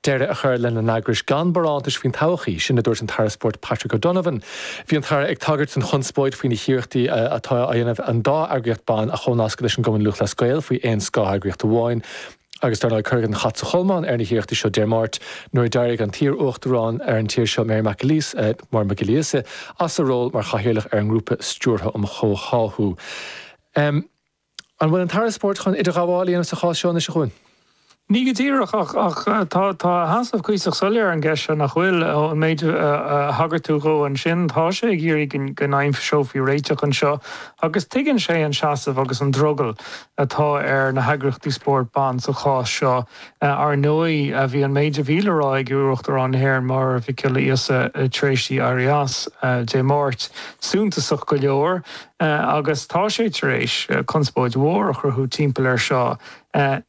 Deireadh a chur lena n-eagrais gan barántais faoin todhchaí, sin a dúirt an tAire Spóirt Patrick O'Donovan. Bhí an tAire ag tagairt don chonspóid faoi na hiarrachtaí atá á dhéanamh an dá eagraíocht ban a chomhnascadh leis an gCumann Lúthchleas Gael faoi aon scátheagraíocht amháin agus dar ndóigh cuireadh an chat sa cholmán ar na hiarrachtaí seo Dé Máirt nuair a d'éirigh an t-iarUachtarán ar an tír seo Mary McAleese Máire Mhic Giolla Íosa as a ról mar Chathaoirleach ar an nGrúpa Stiúrtha um Chomhtháthú An bhfuil an tAire Spóirt chun idirghabháil a dhéanamh sa chás seo anois, a Chuain? Ní go díreach ach tá a sheasamh cuíosach soiléir ar an gceist seo, nach bhfuil? Ón méid a thagair tú dhó ansin, tá sé ag iarraidh go n-aimseofaí réiteach anseo agus tuigeann sé an seasamh agus an drogall atá ar na heagraíochtaí spóirt ban sa chás seo. Ar ndóigh, bhí an méid a bhí le rá ag iarUachtarán na hÉireann, Máire Mhic Giolla Íosa, tar éis di éirí as Dé Máirt, suntasach go leor. Sea, agus tá sé tar éis conspóid mhór a chruthú timpeall air seo.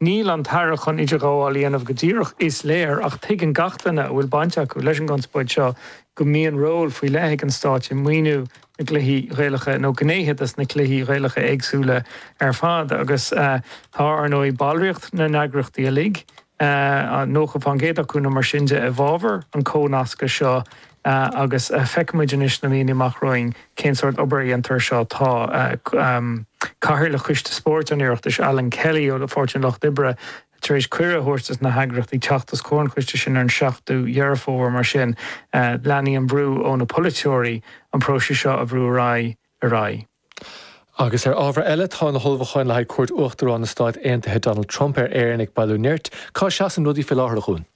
Níl an tAire chun idirghabháil a dhéanamh go díreach, is léir, ach tuigeann gach duine a bhfuil baint acu leis an gconspóid seo go mbíonn ról faoi leith ag an Stáit i maoiniú na gcluichí Gaelacha, nó gnéithe dos na cluichí Gaelacha éagsúla ar fad, agus tá, ar ndóigh, ballraíocht na n-eagraíochtaí uilig. 90% acu nó mar sin de i bhfabhar an chomhnasctha seo agus feicfimid anois sna míonna amach romhainn cén sórt obair a dhéantar ar seo. Tá Cathaoirleach Choiste Spóirt an Oireachtais, Alan Kelly ó Pháirtí an Lucht Oibre, tar éis cuireadh a thabhairt dos na heagraíochtaí teacht os comhair an choiste sin ar an 7ú Dheireadh Fómhair. Mar sin, leanfaidh an brú ó na polaiteoirí an próiseas seo a bhrú ar aghaidh. ar aghaidh. Agus ar ábhar eile, tá na hullmhúcháin le haghaidh cuairt Uachtarán na Stáit Aontaithe Donald Trump ar Éirinn ag bailiú nirt. Cá seasann rudaí fé láthair, a Chuain?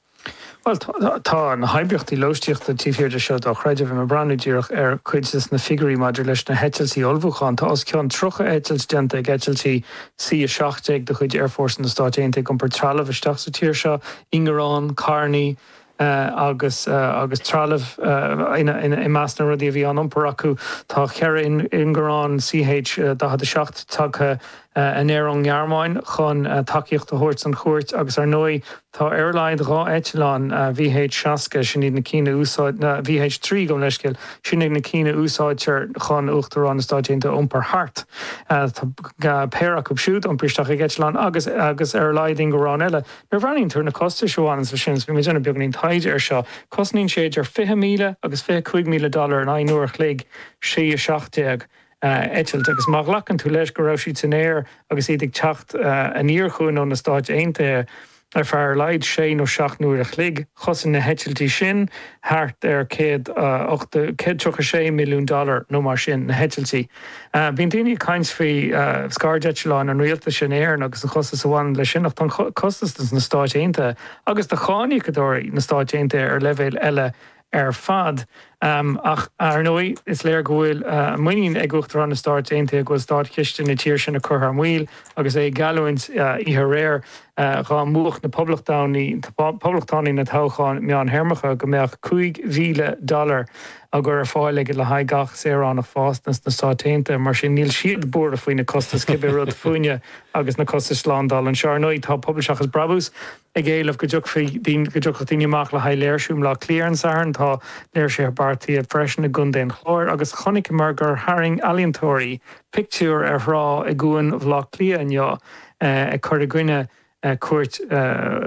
Bhuel, tá na hoibríochtaí lóistíochta taobh thiar de seo dochreidte. Bhí mé ag breathnú díreach ar chuid dos na figiúirí maidir leis na heitiltí ullmhúcháin, tá os cionn 30 eitilt déanta ag eitiltí C-17 de chuid Aerfhórsa na Stáit Aontaithe ag iompar trealaimh isteach sa tír seo, ingearáin, carrannaí, agus agus trealamh i measc na rudaí a bhí á n-iompar acu. Tá cheithre ingearán CH47 tagtha anoir ón nGearmáin chun tacaíocht a thabhairt don chuairt agus ar ndóigh tá ar a laghad dhá eitleán VH60, sin iad na cinn a úsáid, VH3 gabhaim leithscéal, sin iad na cinn a úsáidtear chun Uachtarán na Stáit Aontaithe a iompar thart, tá péire acu siúd iompair isteach ag eitleán agus agus ar a laghad ingearán eile. Nuair a bhreathnaíonn tú ar na costais a bhaineanns leis sin, agus bhí mé ag déanamh beagáinín taighde air seo, cosnaíonn sé idir 20,000 agus 25,000 dollar in aghaidh an uair a chloig, C-17, a eitilt. Agus má ghlacann tú leis go raibh siad san aer agus iad ag teacht aniar chugainn ó na Stáit Aontaithe ar feadh ar a laghad sé nó seacht n-uaire a chloig, chosain na heitiltí sin thart ar 136 milliún dollar nó mar sin, na heitiltí. Bíonn daoine ag caint faoi scairdeitleáin an rialtais in Éirinn agus an costas a bhaineann leis sin, ach tá an costas do na Stáit Aontaithe agus do cháiníocadóirí na Stáit Aontaithe ar leibhéal eile ar fad. Ach, ar ndóigh, is léir go bhfuil muinín ag Uachtarán na Stáit Aontaithe go bhfuil státchiste na tír sin ag cur thar maoil agus é ag geallúint oíche aréir dhá mbuafadh na Poblachtánaigh na toghcháin meánthéarmacha go mbeadh cúig mhíle dollar á gcur ar fáil aige le haghaidh gach saoránach fásta sna Stáit Aontaithe. Mar sin, níl siad buartha faoi na costais, cibé rud fúinne agus na costais slándála anseo. Ar ndóigh, tá Pobal Seachas Brabús ag éileamh go dtiocfadh daoine amach le haghaidh léirsiú i mBleá Cliath ar an Satharn. Tá léirsithe beartaithe freisin i gContae an Chláir agus chonaiceamar gur tharraing ealaíontóirí pictiúr ar thrá i gCuan Bhleá Cliath inniu ag cur i gcoinne cuairt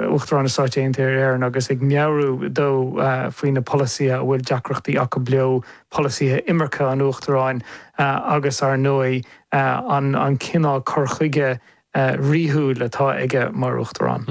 Uachtarán na Stáit Aontaithe ar Éirinn agus ag meabhrú dó faoi na polasaithe a bhfuil deacrachtaí acu leo, polasaithe imirce an Uachtaráin agus, ar ndóigh, an cineál cur chuige ríúil atá aige mar Uachtarán.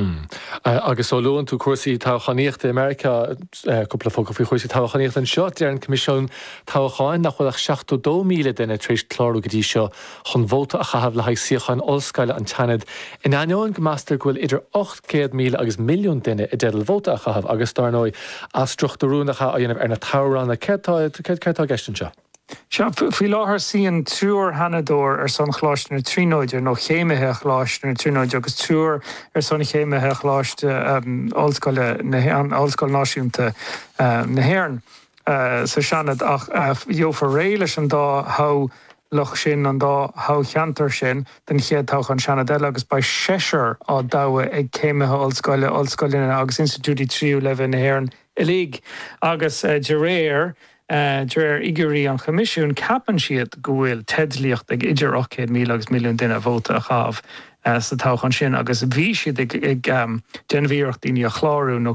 Agus ó luann tú cúrsaí toghchánaíochta i Meiriceá, cúpla focal faoi chúrsaí toghchánaíochta anseo. Deir an Coimisiún Toghcháin nach bhfuil ach 72,000 duine tar éis clárú go dtí seo chun vóta a chaitheamh le haghaidh suíocháin ollscoile an tSeanaid, in ainneoin go meastar go bhfuil idir 800,000 agus milliún duine i dteideal vóta a chaitheamh agus, dár ndóigh, athstruchtúrú nach ea á dhéanamh ar na toghranna. Céard tá céard tá i gceist anseo? Sea, faoi láthair, suíonn triúr Sheanadóir ar son Choláiste na Tríonóide, nó chéimithe Choláiste na Tríonóide, agus triúr ar son chéimithe Choláiste Ollscoile, Ollscoil Náisiúnta na hÉireann, sa Seanad ach gheofar réidh leis an dá thogh lach sin an dá thoghcheantar sin don chéad toghchán Seanaid eile agus beidh seisear á dtoghadh ag céimithe ollscoile, ollscoileanna agus institiúidí tríú leibhéal na hÉireann uilig agus de réir de réir fhigiúirí an Choimisiúin ceapann siad go bhfuil teidlíocht ag idir 800,000 agus milliún duine vóta a chaitheamh sa toghchán sin agus bhí siad ag déanamh iarracht daoine a chlárú nó